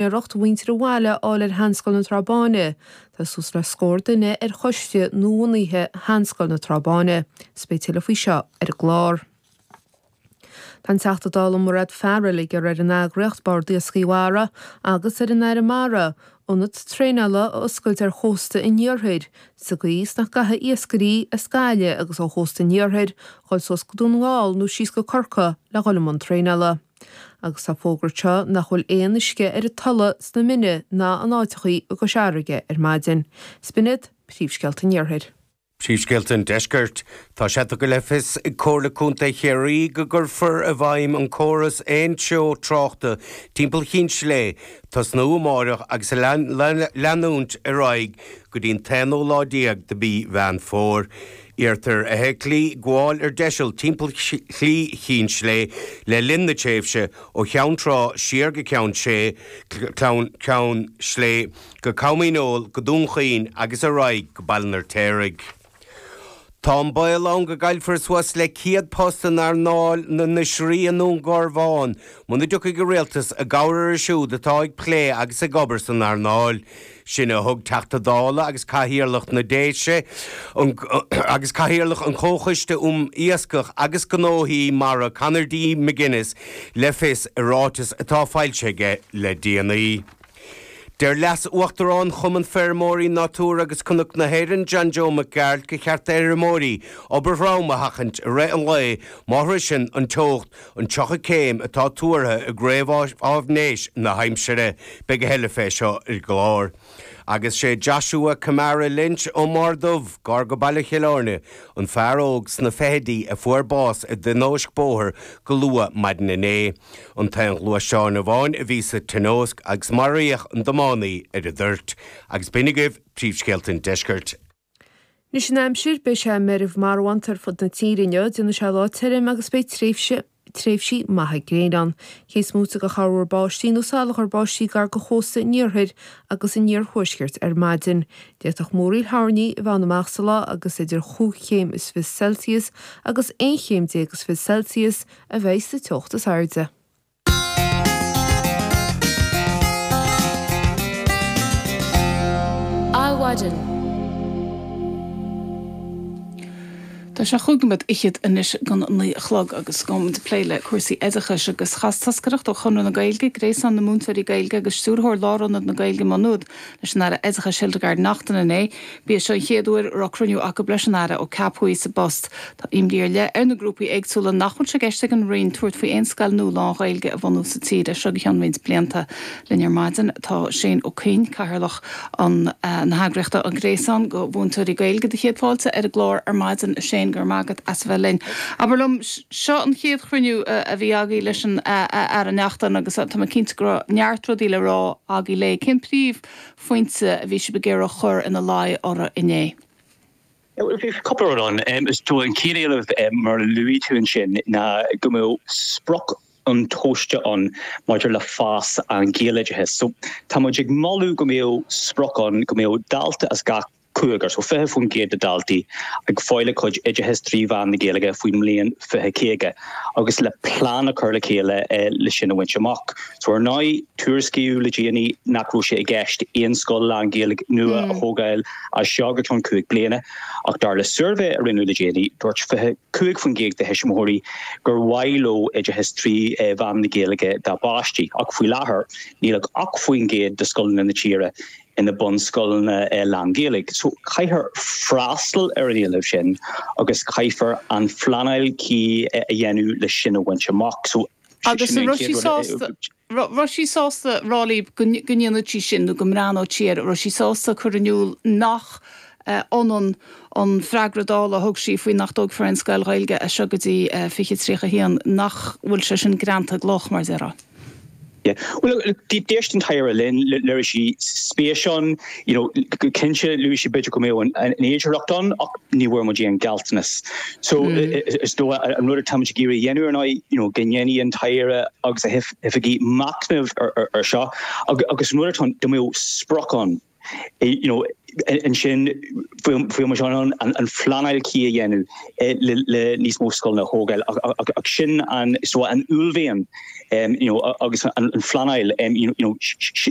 iarracht ag muintir an bhaile seilbh a fháil ar Sheanscoil na Trá Báine, tá suas le scór duine ar choiste nuabhunaithe Sheanscoil na Trá Báine, is beidh tuilleadh faoi seo ar an gclár. Tá an Teachta Dála Mairéad Farrell ag iarraidh ar an eagraíocht Bord Iascaigh Mhara agus ar an Aire Mara ionad traenála a oscailt ar chósta an iarthair sa gcaoi is nach gcaithfidh iascairí as Gaillimh agus ó chósta an iarthair dhul suas go Dún na nGall nó síos go Corcaigh le dhul i mbun traenála. Agus tá fógartha nach bhfuil aon uisce ar an Tulaigh sna Mine ná in áiteachaí i gCois Fharraige ar maidin. Is b'in iad, Príomhscéalta an Iarthair. Príomhscéalta an Deiscirt. Tá sé tugtha le fios ag Comhairle Contae Chiarraí go gcuirfear i bhfeidhm an córas aon treo tráchta timpeall Chinn Slé, ag tosnú amáireach agus leanúint ar aghaidh go dtí an t-aonú lá déag de mhí Mheán Fómhair. Iarrtar ar fheithiclí gabháil ar deiseal timpeall Shlí Chinn Slé le linn na tréimhse ó Cheann Trá siar go Ceann Sé, Ceann Slé go Com Dhíneol, go Dún Chaoin agus ar aghaidh go Baile an Fheirtéaraigh. Tá an baol ann go gcaillfear suas le 100 post in earnáil na n-oisrí i nDún Garbhán muna dtiocfaidh an Rialtas i gcabhair orthu siúd atá ag plé agus ag obair san earnáil. Sin a thug Teachta Dála agus Cathaoirleach na nDéise agus Cathaoirleach an Chomhchoiste um Iascach agus Gnóthaí Mara Conor D McGuinness le fios i ráiteas atá foilsithe aige le déanaí. Deir Leas-Uachtarán Chumann Feirmeoirí Natura agus Cnoc na hÉireann, John Joe Mac Gearailt gur cheart d'fheirmeoirí obair throm a sheachaint i rith an lae má shroicheann an teocht An tríocha céim atá tuartha i réamhfháisnéis na haimsire, beidh a thuilleadh fé seo ar an gclár. Agus sé Joshua Kamara Lynch ón mBarr Dubh, gar go baile Chill Airne, an fear óg sna fichidí a fuair bás i dtionóisc bóthair go luath maidin inné, an t-aon ghluaisteán amháin a bhí sa tionóisc agus maraíodh an tiománaí ar an dtoirt. Agus b'in agaibh príomhscéalta an deiscirt. Anois an aimsir, beidh sé meirbh marbhánta ar fud na tíre inniu, déanfaidh sé lá tirim agus beidh tréimhse, tréimhsí, maithe gréine ann, cé is móite de chorrmhúr báistí nó salachar báistí gar do chósta an iarthair agus an iarthuaiscirt ar maidin. D'fhéadfadh múraíl thoirní a bheith ann amach sa lá agus idir chúig chéim is fiche Celsius agus aon chéim déag is fiche Celsius a bheidh sa teocht is airde. Adhmhaidin. Tá sé cúig nóiméad fichead anois don naoi a chlog agus gabhfaidh muid ag plé le cúrsaí oideachais agus chas toscaireacht ó Chonradh na Gaeilge, Gréasán na Múinteoirí Gaeilge agus Stiúrthóir Lárionad na Gaeilge, Maigh Nuad, leis an Aire Oideachais Hildegarde Naughton inné. B'í seo an chéad uair a raibh cruinniú acu leis an Aire ó ceapadh í sa bpost. Tá imní ar leith ar na grúpaí éagsúla nach bhfuil sé i gceist ag an Roinn tabhairt faoi aon scoil nua lán-Ghaeilge a bhunú sa tír as seo go ceann roinnt blianta. Linn ar maidin tá Shane Ó Coinn, Cathaoirleach na heagraíochta An Gréasán do Mhúinteoirí Gaeilge do Chéad Fáilte ar an gclár ar maidin. A Shane, go raibh maith agat as a bheith linn. Abair liom. Seo an chéad chruinniú a bhí agaí leis an Aire Neachtain agus tá mé cinnte go raibh neart rudaí le rá agaí léi. Cén príomhphointe a bhí sibh ag iarraidh chur ina luí uirthi inné? Bhí cúpla rud ann. Is é an chéad éileamh mar a luaigh tú ansin ná go mbeadh sprioc intomhaiste ann maidir le fás an Ghaeloideachais. So tá muid ag moladh go mbeadh sprioc ann go mbeadh dalta as gach cúigear, so 20% de dhaltaí, ag fáil a gcuid oideachais trí mheán na Gaeilge faoin mbliain 2050 agus le plean a chur le chéile le sin a bhaint amach. So ar ndóigh, tuairiscíodh le déanaí nach raibh sé i gceist aon scoil lán-Ghaeilge nua a thógáil as seo go ceann cúig bliana ach dar le suirbhé a rinneadh le déanaí, dúirt 25% de thuismitheoirí gur mhaith leo oideachas trí mheán na Gaeilge dá bpáistí ach faoi láthair, níl ach 8% de scoileanna na tíre ina bunscoileanna lánGhaeilge so caithfear freastal ar an éileamh sin agus caithfear an phleanáil cuí a dhéanamh leis sin a bhaint amach so. Agus raibh sí sásta a rá libh go ndéanfaidh sí sin nó go mbreathnóidh sí air, raibh sí sásta a chur in iúl nach. ionann an freagra Dála a thug sí faoi nach dtóigfear aon scoil Ghaeilge as seo go dtí 2031. Nach bhfuil sé sin greanta i gcloch, mar a déarfá? Bhuel, d'éist an tAire linn, léirigh sí spéis ann, you know, go cinnte luaigh sí b'fhéidir go mbeadh an fhéidearthacht ann ach ní bhfuair muid aon ghealltanas. So, is dócha an rud atá muid ag iarraidh a dhéanamh ar ndóigh, you know, go ndéanfaidh an tAire agus a hoifigigh machnamh air seo agus an rud atá ann go mbeadh sprioc ann, you know ansin féidir ansin an phleanáil cuí a dhéanamh le níos mó scoileanna a thógáil ach sin an uaillmhian you know agus an phleanáil you know